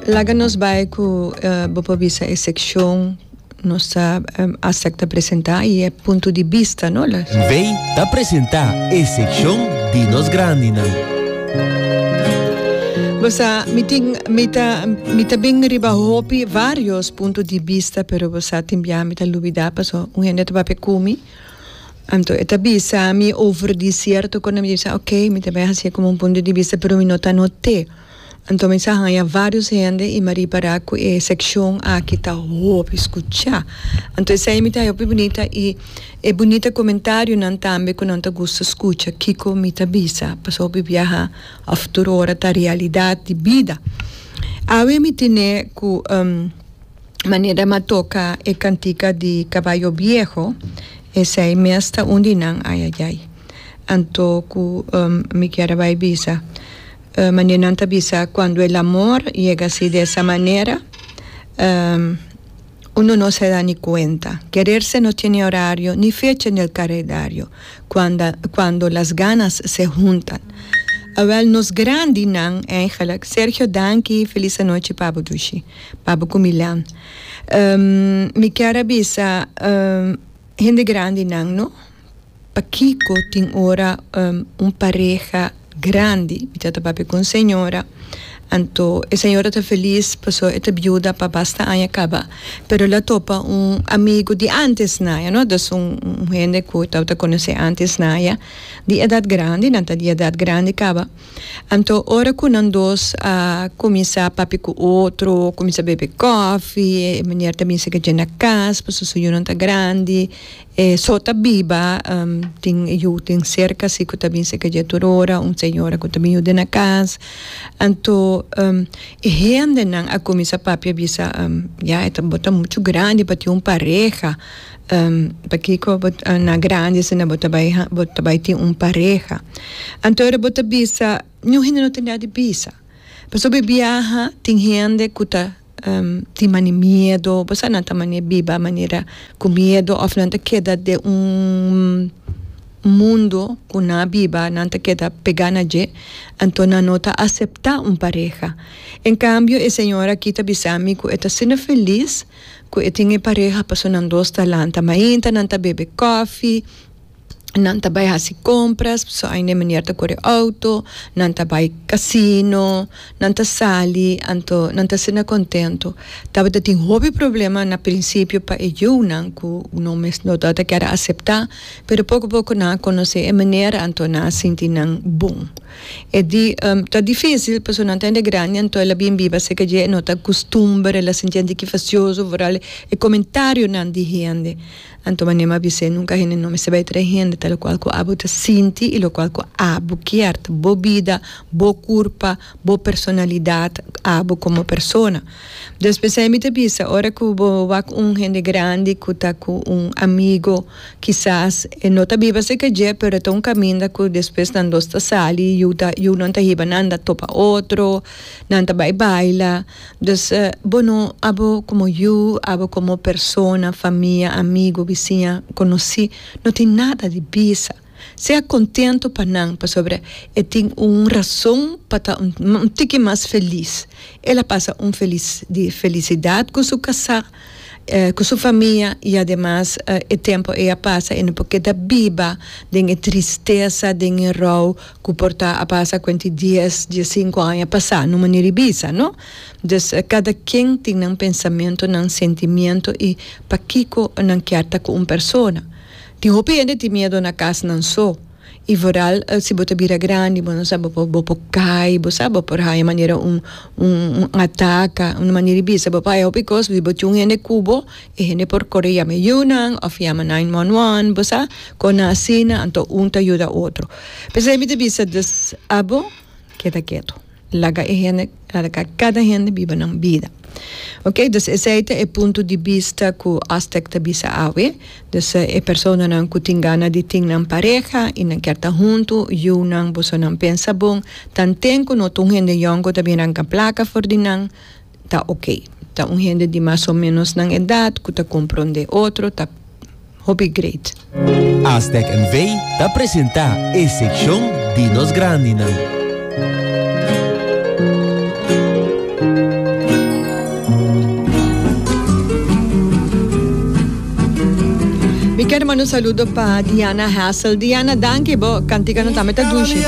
Laga nos bai ku bo por bisa e sekshon nos ta asepta presentá i e punto di bista no. N'vei ta presentá e sekshon di nos grandinan. Bo sa mi tin mi ta mi ta bin riba hopi varios punto di bista pero bo sa tin bia mi ta lubidá paso un hende ta papia ku mi. Anto e ta bisa mi over di sierto cosa mi ta bisa ok mi ta bai haci'e como un punto di vista pero mi no ta note anto mi sa haya varios hende y mi a ripara cu e seccion aki ta hopi scucha anto esei mi ta haya hopi bunita y e bunita comentarionan tambe cu nan ta gusta scucha kico mi ta bisa pasobra hopi biaha a futuro ora ta realidad di bida awe mi tene cu. Manera e matoka e cantica di Caballo Viejo, esey mes ta un di nan ayayay. Anto cu mi kier a bay bisa, manera nan ta bisa cuando el amor yega asi di esa manera, uno no se da ni cuenta. Quererse no tiene horario ni fecha en el caredario, cuando cuando las ganas se huntan. Awel nos grandinan, eigenlijk, Sergio danki, feliz anochi pa bo dushi. Pabo ku Milan. Mi kier a bisa hende grandinan no, pakiko tin ora un pareha grandi, mi ta ta papia ku un señora, anto e señora ta felis pasobra e ta biuda pa basta aña kaba, pero el a topa un amigu di ántes na ella no, dus un hende ku tabata konosé ántes na ella, di edat grandi, nan ta di edat grandi kaba. Anto ora ku nan dos a kuminsá papia ku otro, kuminsá bebe kòfi, e miner ta binse kachê na kas pasobra su yunan ta grandi, e so ta biba, tin e yu tin serka si ku ta binse kachê tur ora, un señora ku ta bin yuda na kas. Anto e hendenan a kuminsá papia bisa, ya e ta bo ta muchu grandi pa tin un pareha. Pakico bo na grandi asina bo ta bai bo ta bai tin un pareha anto ora bo ta bisa ningún hende no ta intenta di bisa pasobra e biaha tin hende ku ta tin mani miedo bo sa nan ta mane biba manera ku miedo of nan ta keda den un mundo ku na biba nan ta keda pega na dje anto nan no ta acepta un pareha en cambio e señor aki ta bisa mi ku e ta asina feliz. Cu e tin e pareha paso nan dos ta lanta mainta, nan ta bebe cofi, nan ta bay haci compras, paso ain e meneer ta core auto, nan ta bay casino, nan ta sali, anto nan ta asina contento. Tabata tin hopi problema na principio pa e yiunan cu no mes no ta ta kier acepta, pero poco poco nan a conoce e meneer, anto nan a sinti nan bon. E di, Ta difísil, pasobra nan ta hende grandi anto el a bin biba serka dje, e no ta akustumber, el a sinti hende ki fasioso, vooral e komentarionan di hende. Anto manera mi a bis'é, nunka hende no mester bai traha hende, ta lokual ku abo ta sinti i lokual ku abo kier, ta bo bida, bo kurpa, bo personalidat, abo komo persona. Despues esei mi ta bisa, ora ku bo wak un hende grandi ku ta ku un amigo, Kisas e no ta biba serka dje, pero e ta un kaminda ku despues nan dos ta sali i yu ta yunan ta hiba nan ta topa otro, nan ta bai baila. Dus bo no abo komo yu, abo komo persona, famia, amigu, bisiña, konosí no tin nada di bisa. Sea contento pa nan, pasobra e tin un razon pa ta un tiki mas feliz. El a pasa un feliz di felicidad cu su casá, cu su famia y ademas e tempo ei a pasa e no por keda biba den e tristeza, den e rouw cu por ta a pasa cu enti dies, dies cinco aña pasa, n'un manera di bisa, no? Dus, cada quien tin nan pensamiento, nan sentimiento y pakico nan kier ta cu un persona. Tin hopi hende tin miedo na casnan so y vooral si bo ta bira grandi bo no sa bo por bo por cay bo sa bo por haya manera un un ataca un manera di bisa bo por haya hopi cos si bo tin un hende cubo e hende por core yama yunan of yama nine one one bo sa con nan asina anto un ta yuda otro p'esei mi ta bisa dus abo keda keto. Laga e hende laga kada hende biba nan bida ok dus esey ta e punto di bista ku Astec ta bisa awe dus e personanan ku tin gana di tin nan pareha i nan kier ta huntu yunan boso nan pensa bon tanten ku no ta un hende yongo ta bini ranka plaka for di nan ta ok. Ta un hende di mas o menos nan edad cu ta comprende otro, ta hopi great. Aztec NV ta presenta e seccion di nos grandinan. Mi ker manda un saludo pa Diana Hassel. Diana, danki bo canticano tambe ta dushi.